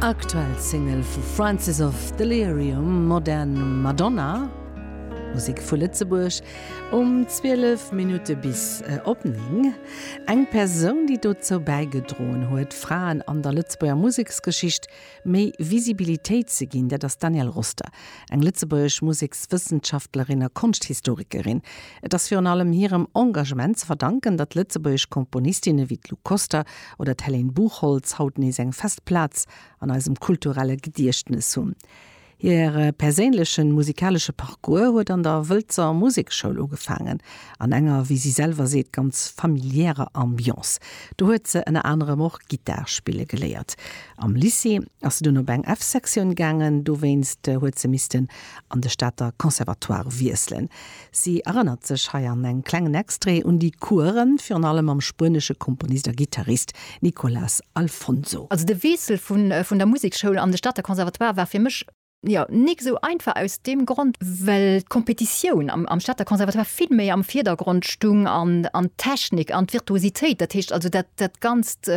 Aktuell Single vu Francis of Delirium, Modern Madonna, Musek vu Lëtzebuerg um 12 Minutte bis op 9. Eng Persoun, déi dozou bäigedroen huet, Fraen an der Lëtzebuerger Museksgeschicht méi Visibilitéit ze ginn, dat ass d'Danielle Roster, eng lëtzebuergesch Musekswëssenschaftlerin a Konschthistorikerin. Et ass virun allem hirem Engagement ze verdanken, datt lëtzebuergesch Komponistinne wéi d'Lou Koster oder d'Hélène Buchholtz haut nees eng fest Plaz an eisem kulturelle Gediechtnes hunn. Hire perséinlechen musikalesche Parcours huet an der Wëlzer Musekschoul ugefaangen, an enger, wéi si selwer seet, ganz familiärer Ambiance. Do huet se ënner anerem och Gittar spille geléiert. Am Lycée ass se dunn op eng F-Sektioun gaangen, dowéinst huet se missten an de Stater Conservatoire wiesselen. Si erënnert sech hei an engem klengen Extrait un déi Coursen, virun allem mam spuenesche Komponist a Gittarist Nicolas Alfonso. Also de Weessel vun der Musekschoul an de Stater Conservatoire war fir mech, jo, nik esou einfach aus deem Grond, well d'Kompetitioun am Stater Conservatoire vill méi am Virdergrond stung an d'Technik an d'Virtuositéit, dat heescht also dat ganzt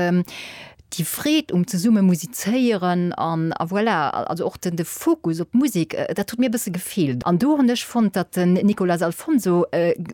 déi Freed um zesumme musizéieren an a voilà, also och de Fokus op d'Musek, dat huet mir e bësse gefeelt an do hunn ech fonnt, datt den Nicolas Alfonso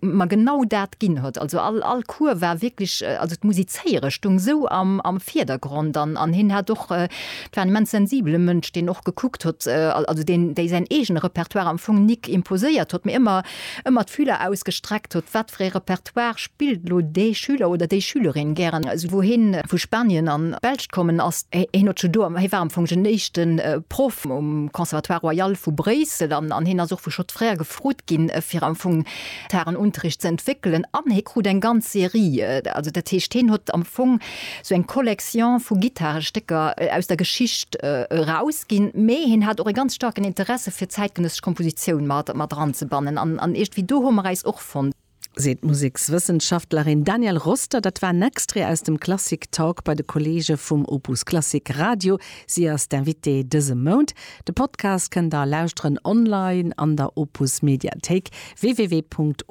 mer genau dat ginn huet. Also all Cours war wierklech, also d'Musizéiere stoung esou am Virdergrond an hien hat och, et war en immens sensibele Mënsch, deen och gekuckt huet, also deen déi säin eegene Repertoire am Fong nik imposéiert huet, mee ëmmer d'Fühler ausgestreckt huet, wat fir ee Repertoire. D'Histoire spillt elo dee Schüler oder déi Schülerin gären, esou wou hien vu Spanien an d'Belsch kommen ass. Hien huet scho do, hie war am Fong den éischte Proff um Conservatoire Royal vu Bréissel an hien ass och vu Schott Frères gefrot ginn, fir am Fong d'Harenunterricht ze entwéckelen. An hie krut eng ganz Serie, also dat heescht, hien huet am Fong esou eng Collection vu Gittarestécker aus der Geschicht erausginn, mee hien hat och e ganz staarken Interesse fir zäitgenëssesch Kompositioun mat eranzebannen an iergendwéi do hu mer äis och fonnt. seet d'Musekswëssenschaftlerin Danielle Roster. Dat war en Extrait aus dem Klassik Talk bei de Kolleege vum Opus Klassik Radio. Si ass d'Invitée dëse Mount. De Podcast kënnt der lauschteren online an der Opus Mediathéik, www.opus.radio.